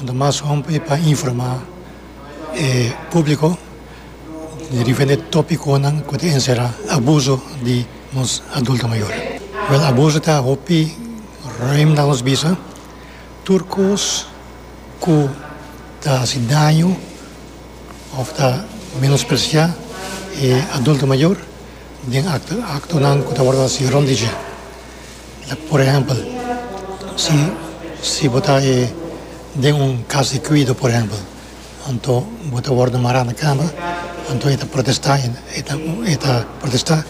Anto mas hopi e pa informá e públiko di diferente tópikonan ku ta enserá abuso di nos adulto mayor. Wèl, abuso ta hopi ruim na nos bisa. Tur kos ku ta hasi daño òf ta menospresiá e adulto mayor den aktonan ku ta wòrdu hasi rònt di dje. Por ehèmpel, si si bo ta den un kas di kuido, por ehèmpel, anto bo ta wòrdu mará na kama, anto e ta protestá, e ta protestá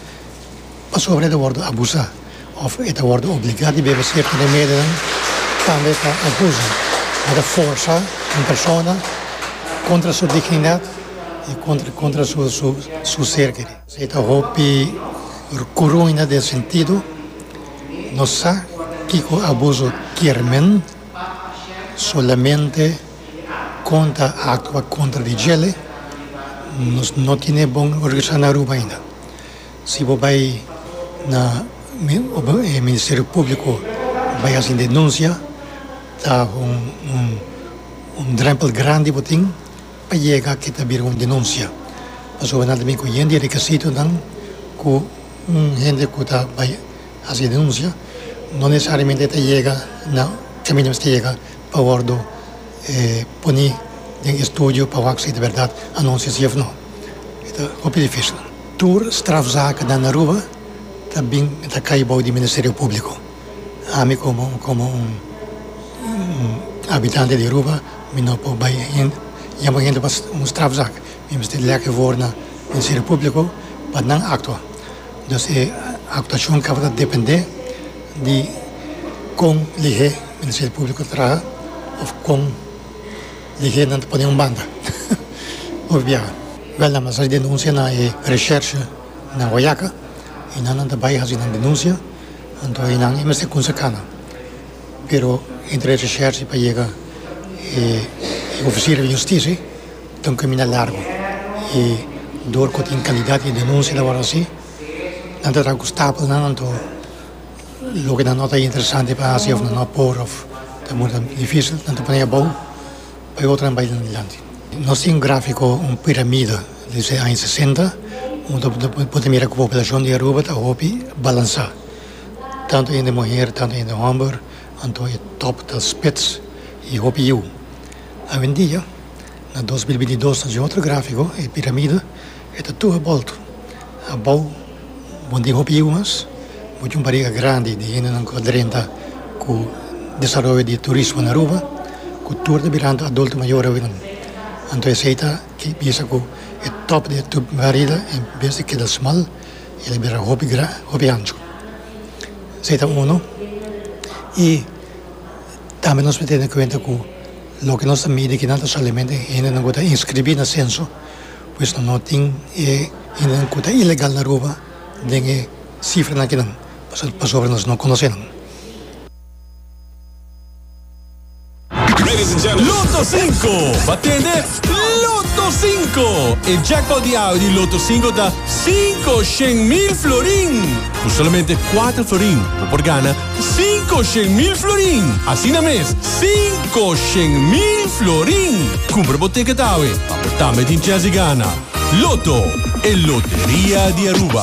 pasobra e ta wòrdu abusá òf e ta wòrdu obligá di bebe sierto remedionan, tambe ta abuso, bo ta forsá un persona kontra su dignidat i kontra kontra su ser. Si ta hopi rcuruina den sentido, no sa kico abuso kier men, solamente con ta actua contra di djele, nos no tine bon organisa na Aruba ainda. Si bo bay na Ministerio Publico bay haci un denuncia ta un drempel grandi bo tin a yega ke ta bira un denunsia pasobra nan ta bin ku yen di rekisitonan ku un hende ku ta bai hasi denunsia no nesesariamente ta yega na kaminda mester yega pa wòrdu poni den estudio pa wak si ta bèrdat anunsia si òf no e ta hopi difísil. Tur strafzakennan na Aruba ta bin ta kai bou di Ministerio Públiko. ami komo komo un un habitante di Aruba mi no por bai hen yama hende pa un strafzak mi mester lèkè for na Ministerio Públiko pa nan aktua dus e aktuashon tabata dependé di kon lihé Ministerio Públiko ta traha òf kon lihé nan ta pone un banda òf biaha. Bèl nan mi a hasi denunsia na e reshèrshe na Guayaca i nan nan ta bai hasi nan denunsia. Anto e nan e mester kunsa kanga, pero e drecha shersi pa yega e ofisier di hustisi ta un kaminda largu y dor ku tin kalidat di denunsia ta wòrdu hasi nan ta traha ku stapelnan anto loke nan no ta interesante pa hasi of nan no por of ta munda difisil nan ta pon'e abou pa e otronan bai den dilanti. Nos tin un grafiko un piramida Dese aña sesenta bo ta bo ta mira ku poblacion di Aruba ta hopi balansa. Tantu hende muher, tantu hende homber, anto e top ta spits i hopi yiu. Awendia, na dos mil binti dos ta den otro grafiko, e piramida e ta tur bolto. Abou bo tin hopi yiu mas, bo tin un bariga grandi di hendenan ku ta drenta ku desaroyo di turismo na Aruba, ku tur ta biranta adulto mayor awenan. Anto esei ta. E bisa ku e tòp di e tub Merida en bes di keda smal el a bira hopi gran, hopi ancho. Esei ta unu i tambe nos por tene kuenta ku loke nos ta midi akinan ta solamente hendenan ku ta inskribí na senso, pues nan no tin e hendenan ku ta ilegal na Aruba den e sifranan akinan pasobra nos no konosenan. Lotto Cinco! Ba tende Lotto Cinco! E jackpot di awe di Lotto Cinco ta cinco shen mil florin! Cu solamente cuatro florin bo por gana cinco shen mil florin! Asina mes, cinco shen mil florin! Cumpra bo ticket awe pa bo tambe tin chance di gana! Lotto, e loteria di Aruba.